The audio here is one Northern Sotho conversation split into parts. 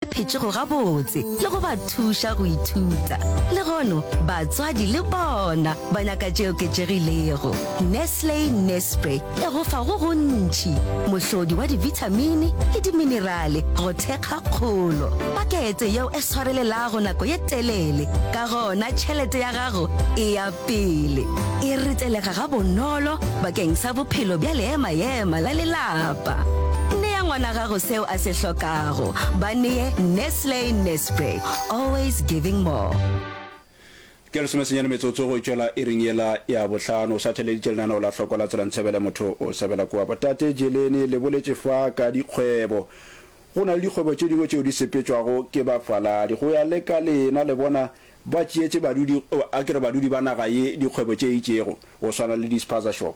phetšego gabotse le go ba thuša go ithuta. Legono batswadi le bona ba nyaka tše oketšegilego. Nestle Nespre e go fa go gontši, mohlodi wa dibithamini le diminerale go thekga kgolo. Pakete yeo e swarelelago nako ye telele, ka gona tšhelete ya gago e ya pele. E ritelega gabonolo bakeng sa bophelo bja leema-ema la lelapa. Nea ngwana gago seo a se hlokago. gago ba neye nestle nespre always giving more ke lesomesenyane metsotso go tšwela e reng yela ya bohlano o sa theleditše lenaneo la hloko la tsela ntshebele motho o sebela kua botate jelene le boletše fa ka dikgwebo go na le dikgwebo tše dingwe tšeo di sepetšwago ke bafaladi go ya le ka lena le bona ba tšeetše badudi a ke re badudi ba naga ye dikgwebo tše itšego go swana le dispaza shop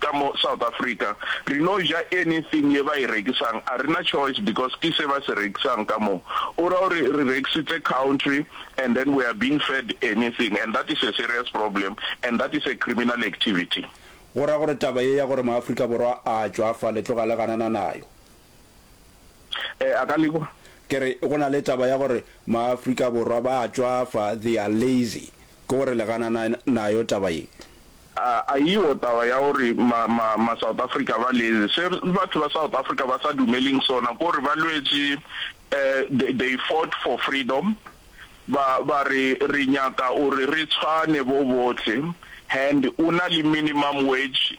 ka mo South Africa re no ja anything ye ba e rekisang a rena choice because ke se ba se rekisang ka mo, o ra gore re rekisitse country and then we are being fed anything and that is a serious problem and that is a criminal activity. Go ra gore taba ye ya gore mo Afrika Borwa a tšwafale tloga le ganana nayo. Eh, a ka le kwa. Ke re, go na le taba ya gore maAfrika Borwa ba a tšwafa, they are lazy. Ke gore le ganana nayo taba ye? A, aiwo taba ya gore ma, ma, ma South Africa ba lazy. Se batho ba South Africa ba sa dumeleng sona, ke gore ba lwetše, eh, they, they fought for freedom, ba, ba re, re nyaka gore re tshwane bo bohle, and o na le minimum wage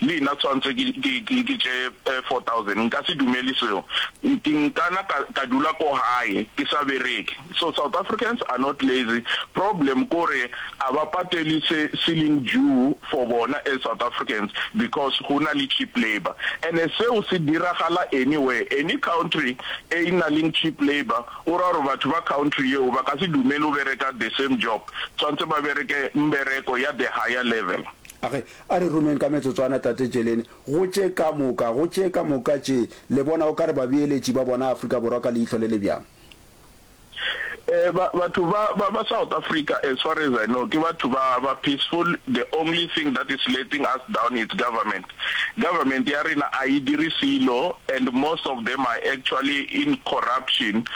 Le yna tshwantse ke, ke, ke, ke tše four thousand. Nka se dumeli seo. Ke nkana ka, ka dula ko gae, ke sa bereke. So South Africans are not lazy. Problem kore a ba pateli se se leng due for bona as South Africans because go na le cheap labour. Ene seo se diragala anywhere. Any country e e na leng cheap labour, o ra gore batho ba country yeo ba ka se dumele go bereka the same job. Tshwantse ba bereke mbereko ya the higher level. A re, A re romeng ka metsotswana, Tate Jelene, go tše ka moka, go tše ka moka tše, le bona o ka re babeeletši ba bona Afrika Borwa ka leihlo le le bjang? Eh, ba, batho ba, ba, ba South Africa, as far as I know, ke batho ba, ba peaceful, the only thing that is letting us down it's government. Government ya rena a e dire selo and most of them are actually in corruption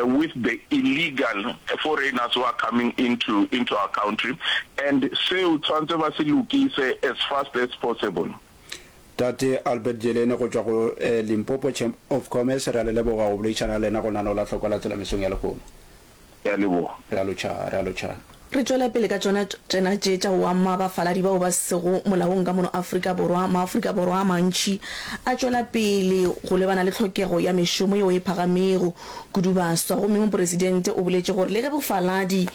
with the illegal foreigners who are coming into into our country and seo tshwantse ba se lokise as fast as possible. Tate Albert Jelene go tšwa go Limpopo Chamber of Commerce, re a le leboga go boledišana le lena go nanola hloko la tsela mesong ya lehono. Re a leboga. Re a lotšha, re a lotšha. Re tšwela pele ka tšona tsena tše tša oamma bafaladi bao ba sego molaong ka mono Afrika Borwa. Maafrika Borwa a mantši a tšwela pele go lebana le tlhokego ya mešomo yeo e phagamego kudu baswa. Gomme Mopresidente o boletše gore le ge bofaladi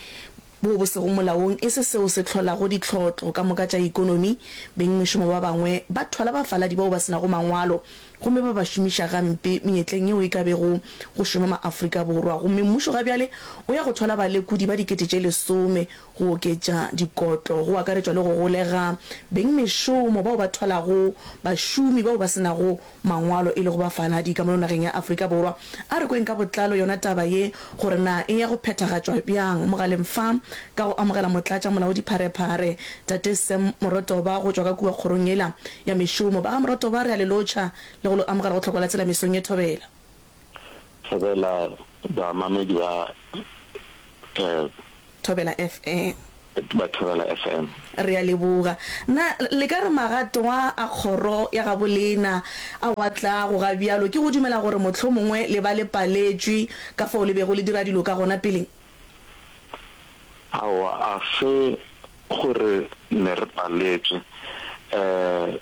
boo bo sego molaong e se seo se hlolago ditlhotlo ka moka tša ekonomi, beng mešomo ba bangwe ba thwala bafaladi bao ba se nago mangwalo. gomme ba ba šomiša gampe menyetleng yeo e ka bego go šoma ma-Afrika Borwa, gomme mmušo ga bjale o ya go thola balekodi ba dikete tše lesome go oketša dikotlo, go akaretšwa le go golega beng mešomo bao ba tholago bašomi bao ba se nago mangwalo e lego bafaladi ka mono nageng ya Afrika Borwa. A re kweng ka botlalo yona taba ye gore na e ya go phethagatšwa bjang mogaleng fa, ka go amogela Motlatša-molaodipharephare Tate Sam Morotoba go tšwa ka kua kgorong yela ya mešomo. Ba ga Morotoba re a le lotšha le go lo amogela go Tlhokola Tsela mesong ye. Thobela. Thobela, baamamedi ba. Thobela FM. Ba Thobela FM. Re a leboga. Na le ka re magatwa a kgoro ya gabo lena a wa tlago ga bjalo ke go dumela gore mohlomongwe le ba le paletšwe ka fao le bego le dira dilo ka gona peleng? Aowa, a se gore ne re paletšwe.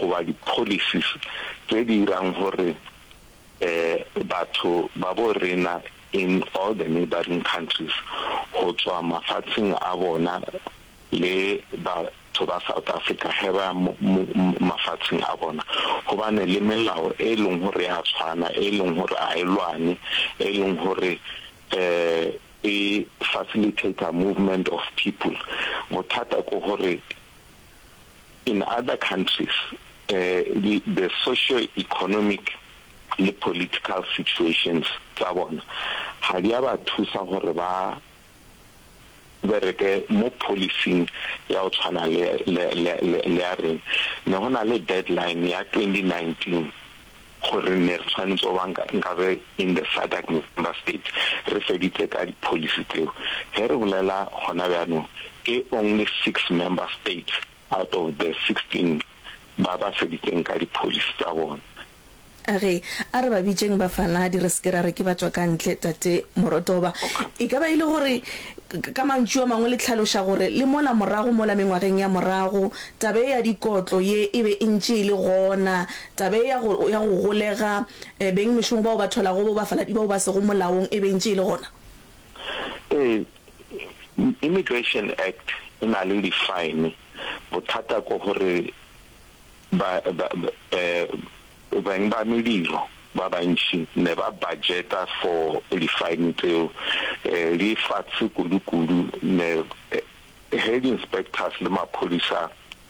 goba di-policies tse di irang gore batho ba bo rena in all the neighbouring countries go tswa mafatsheng a bona le batho ba South Africa ge ba mafatsheng a bona go bane le melao e leng gore ya tshwana e leng gore a e lwane e leng gore e facilitator movement of people bothata ko gore In other countries, the the socio-economic le political situations tsa bona ga di a ba thusa gore ba bereke mo policing ya go tshwana le le le le ya rena. Ne go na le deadline ya 2019 gore ne re tshwanetse go ba nkabe in the SADC member states re feditse ka di policy tseo. Ge re bolela gona bjanong ke only six member states out of the sixteen ba ba feditseng ka di policy tsa bona. A re, A re ba bitšeng bafaladi re se ke ra re ke batšwakantle, Tate Morotoba. E ka ba e le gore, ka mantšu a mangwe le hlaloša gore le mola morago mola mengwageng ya morago taba ye ya dikotlo ye e be e ntše e le gona Taba ye ya go, ya go golega eh, beng mešomo bao ba tholago bo bafaladi bao ba sego molaong e bentše e le gona. Ee, Immigration Act e na le di-fine. Bothata ko gore ba, ba, eh, beng ba mediro ba bantši ne ba budgeta for di-fine tseo, eh, di fatshe kudu-kudu ne, eh, ge di-inspectors le maphodisa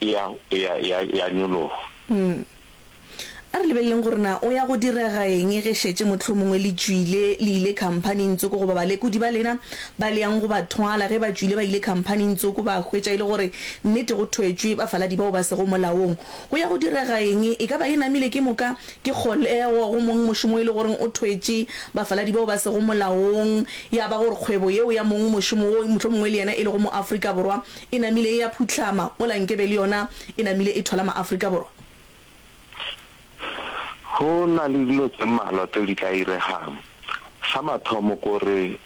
ya, ya, ya, ya nyologa. Umm. A re lebeleleng gore na o ya go direga eng ge šetše mohlomongwe le tšwile le ile khamphaning tsoko goba balekodi ba lena ba le yang go ba thwala. Ge ba tšwile ba ile khamphaning tsoko ba hwetša e le gore nnete go thwetšwe bafaladi bao ba sego molaong. Go ya go direga eng? E ka ba e namile ke moka? Ke kgolego go mong mošomo e le goreng o thwetše bafaladi bao ba sego molaong, ya ba gore kgwebo yeo ya mong mošomo woo mohlomongwe le yena e lego mo Afrika Borwa E namile ya phuhlama mola nkebe le yona e namile e thola maAfrika Borwa. Go na le dilo tse mmalwa tseo di tla iregang. Sa mathomo ke gore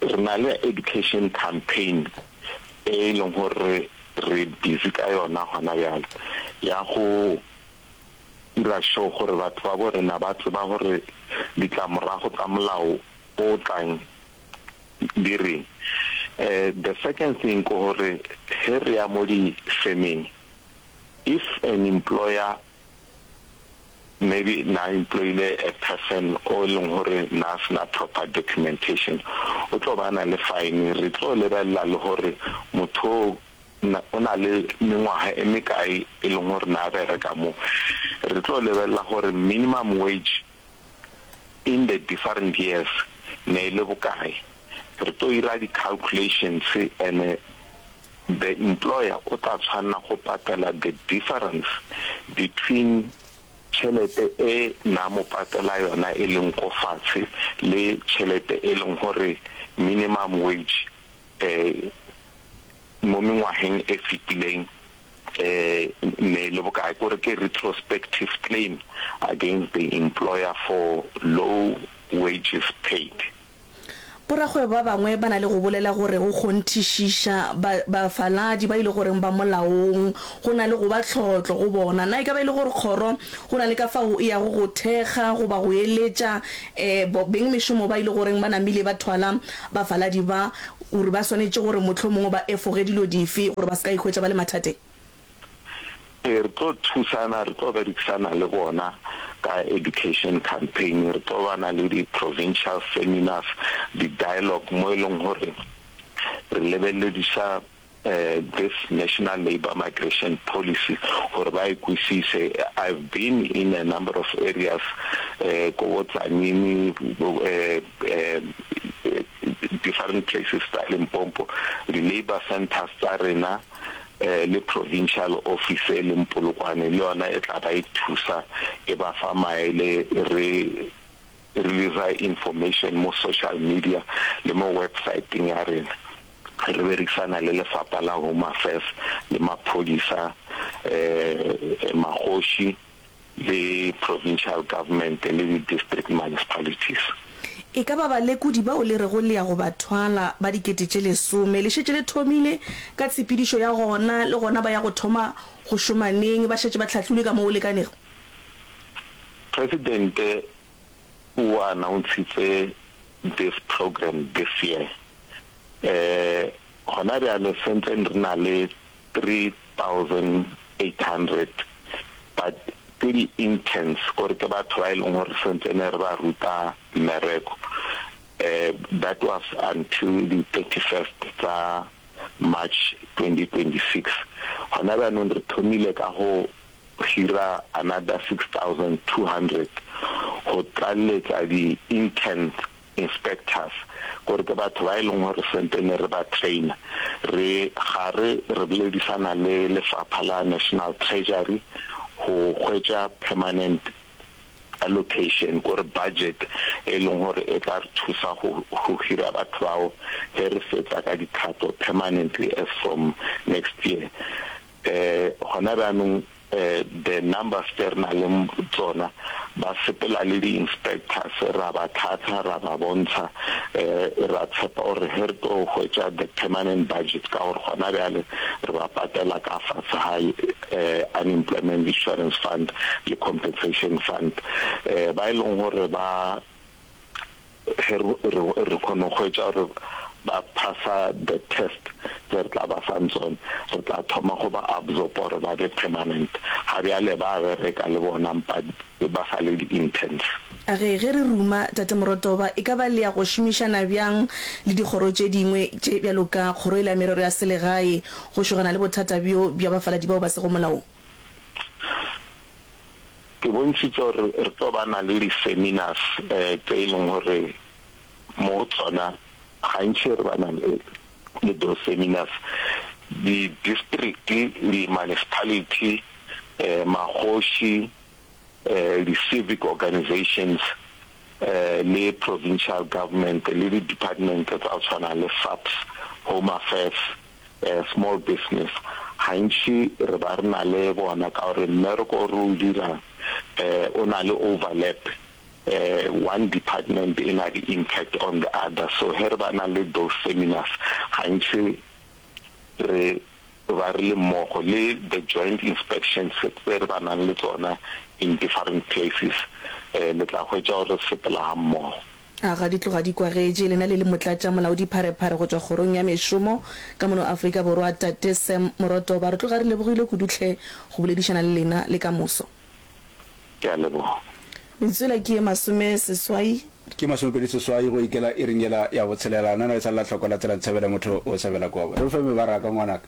re na le education campaign e e leng gore re busy ka yona gona bjale ya go dira sure gore batho ba bo rena ba tseba gore ditlamorago tsa molao o tlang. di reng. The second thing ke gore ge re ya mo di femeng if an employer maybe na employile a person o e leng gore na se na proper documentation o tlo ba na le fine. Re tlo lebelela le gore motho o na le mengwaga e mekae e leng gore na bereka mo. Re tlo lebelela gore minimum wage in the different years ne e le bokae, re tlo ira di calculations ene the employer o tla tshwanela go patela the difference between tšhelete e na mo patela yona e leng ko fatshe le tšhelete e leng gore minimum wage um mo mengwageng e fetileng um mme le bokae kore ke retrospective claim against the employer for low wages paid. Borakgwebo ba bangwe ba na le go bolela gore go kgonthišiša ba bafaladi ba e le goreng ba molaong go na le go ba tlhotlo go bona. Na e ka ba e le gore kgoro go na le ka fao e yago go thekga goba go eletša um beng mešomo ba e le goreng ba namile ba thwala bafaladi ba O re ba swanetše gore mohlomongwe ba efoge dilo dife gore ba se ka ikhwetša ba le mathateng? Ee, re tlo thusana, re tlo berekisana le bona ka education campaign, re tlo ba na le di-provincial seminars, di-dialogue mo e leng gore re lebelediša this National Labour Migration Policy gore ba e kwisise. I've been in a number of areas ko bo Tzaneen, different places tsa Limpopo, di labour centres tsa rena le provincial office e leng Polokwane le yona e tla ba e thusa e ba fa maele re releasa information mo social media le mo websaeteng ya rena re berekisana le lefapha la home affairs le maphodisa um magoši le provincial government le di-district municipalities E ka ba balekodi bao le rego le ya go ba thwala ba dikete tše lesome le šetše le thomile ka tshepedišo ya gona, le gona ba ya go thoma go šoma neng ba šetše ba hlahlilwe ka mo go lekanego? Presidente o announce-itse this program this year. Gona bjale sentse re na le 3,800 ba ke di interns gore ke batho ba e leng gore sentse ne re ba ruta mmereko. That was until di 31st tsa March 2026. Gona bjanong re thomile ka go go hira another 6200 go tlaleletša di interns, inspectors, gore ke batho ba e leng gore sente ne re ba trainer re gare re boledisana le lefapha la National Treasury go hwetša permanent allocation gore budget e leng gore e tla re thusa go go hira batho bao ge re fetsa ka dikgato permanently as from next year. um gona bjanong um the numbers tše re nang le tsona ba sepela le di-inspectors ra ba tlhatlha ra ba bontsha um ra tshepa gore ge re tlo hwetša the permanent budget ka gore gona bjale re ba patela ka fase ga um unemployment insurance fund le compensation fund um ba e leng gore ba ge re re kgone go hwetša gore ba phasa the test tse re tla ba fang tsone re tla thoma go ba absorb gore ba be permanent ga bjale ba bereka le bona mpa ba sa le di-interns A re ge re ruma Tate Morotoba e ka ba le ya go šomišana bjang le dikgoro tše dingwe tše bjalo ka Kgoro e la Merero ya Selegae go šogana le bothata bjo bja bafaladi bao ba sego molaong? Ke bontšhitše gore re tlo ba na le di-seminars tse e leng gore mo go tsona gantši re ba na le those seminars. Di-district, di-municipality, magoši, di-civic organisations le provincial government le di-department tsa go tshwana le SAPS, Home Affairs, eh, small business gantši re ba re na le bona ka gore mmereko o re o dirang eh, o na le overlap eh, one department e na le impact on the other so he re ba na le those seminars gantši re ba re le mmogo le the joint inspections tse re ba nang le tsona in different places um le tla hwetša gore re sepela ga mmogo A ga di tloga di kwagetše, lena le le motlatša molaodipharephare go tšwa kgorong ya mešomo ka mono Afrika Borwa, Tate Sam Morotoba, re tloga re lebogile kudu hle go boledišana le lena le kamoso. Ke a leboga. Metswela ke ye masome seswai. Ke masomepedi seswai go ikela iring yela ya botshelela. Nana e sa lla hloko la tsela ntshabela motho o sabela kobo. Re fe mebaraka ngwanaka.